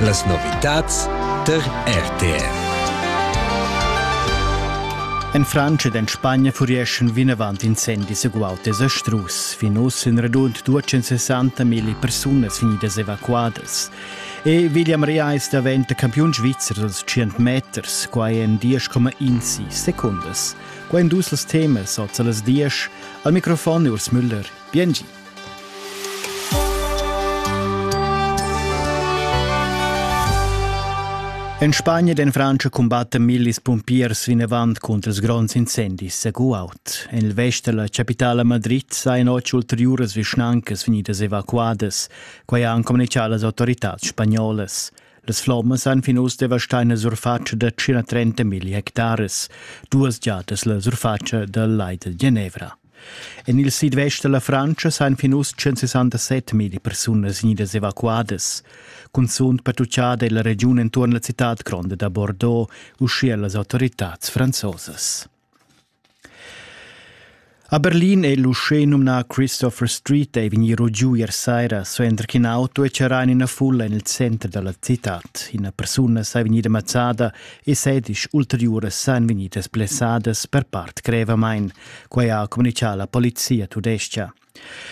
Las novitads tar RTR. En Frantscha ed en Spagna furieschan vinavant incendis eguautes a strus. Fin uss en radund 260 mil persunas vegnidas evacuadas. E William Rea è daventa campiun svizzer dals 100 meters, quai en 10,1 secundas. Quai en dus temas, oz a las 10. Al microfon Urs Müller. Biengi. En Spagna e en Frantscha cumbatten millis pumpiers vinavant cunter ils gronds incendis a Guaut. En il vest da la chapitala Madrid sajan otg ulteriuras vischnancas vegnidas evacuadas. Quai han communitgà las autoritads spagnolas. Las flommas han fin uss devastà ina surfatscha da 130 milli hectares, duas giadas la surfatscha dal Lai del Genevra. En il sidvest da la Frantscha s'han fin uss 167 milli persunas gnidas evacuadas. Cunzunt pertuccada è la regiun enturn la citad gronda da Bordeaux, uschia las autoritads franzosas. A Berlin è l'uschè numnà Christopher Street è vegnì giu ier saira, suenter ch'in auto è charrà en ina fulla en il center da la citad. Ina persuna è vegnida mazzada e sedisch ulteriuras san vegnidas blessadas per part grevamain. Quai ha communitgà la polizia tudestga.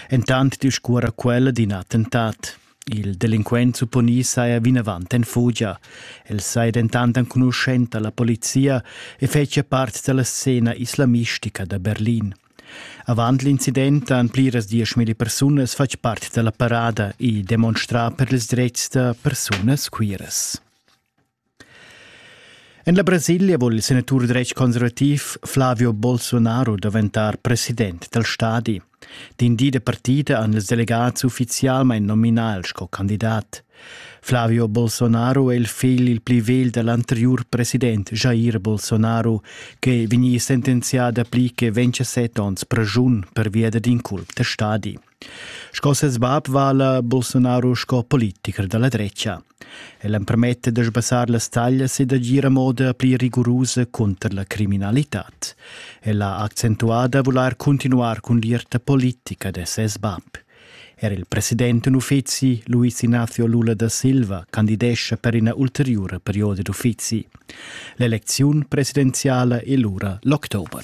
Entant discuora quella d'in attentat. Il delinquent supponì saja vinavant en fugia. El saja dentant enconuschent alla polizia e fetschia part dalla scena islamistica da Berlin. Avant l'incident han pliras dieschmilli persunas fatg part dalla parada e demonstrà per ils dretgs da persunas queeras. En la Brasilia vul il senatur dretg-conservativ Flavio Bolsonaro daventar president dal stadi. D'in di de partida han ils delegats ufficialmain nominal sco candidat. Flavio Bolsonaro è il figl il pli vegl da l'anteriur president Jair Bolsonaro, che vegni sentenzià dapli che 27 onns pregiun pervia dad inculp da stadi. Sco ses bab vala Bolsonaro sco politicher da la drecha. El empermetta da sbassar las taglias e d'agir a moda pli rigurusa cunter la criminalitad. El ha accentuà da volar cuntinuar cun l'ierta politica da ses bab. Er il president in uffizi, Luis Ignacio Lula da Silva, candidescha per ina ulteriura perioda d'uffizi. L'elecziun presidenziala è lura l'october.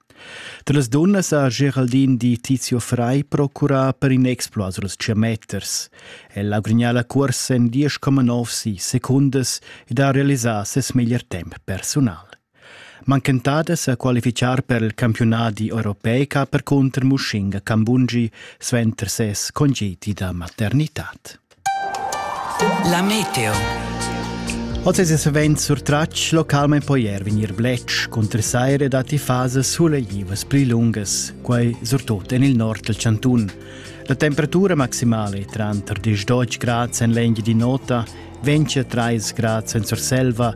Da las dunnas ha Geraldine di Tizio Frei procurà per in exploit suls tschiameters. El ha grignà la cuorsa en 10,9 si secundas ed ha realisà ses meglier temp persunal. Manchentadas a qualifichar per il campiunadi europeic ha percunter Mushinga Kambungi suenter ses congedi da maternitad. La meteo. Oz es savens surtratg localmaing po ier vegnir bletsch cunter saira datti fasas suleglivas pli lungas, quai surtot en il nord del Cantun. La temperatura maximale tranter 10 grads en l'engi di nota, 20 3 grads en Surselva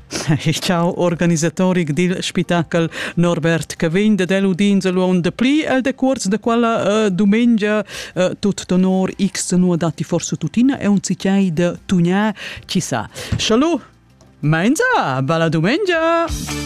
Chau organisatoric dil spitachel Norbert Cavegn de del udins luon de pli el decuors de quella uh, dumengia uh, tut honor x nu dati forse tutina e un cicai de tugna ci sa. Schalu! Meinza, bella dumengia!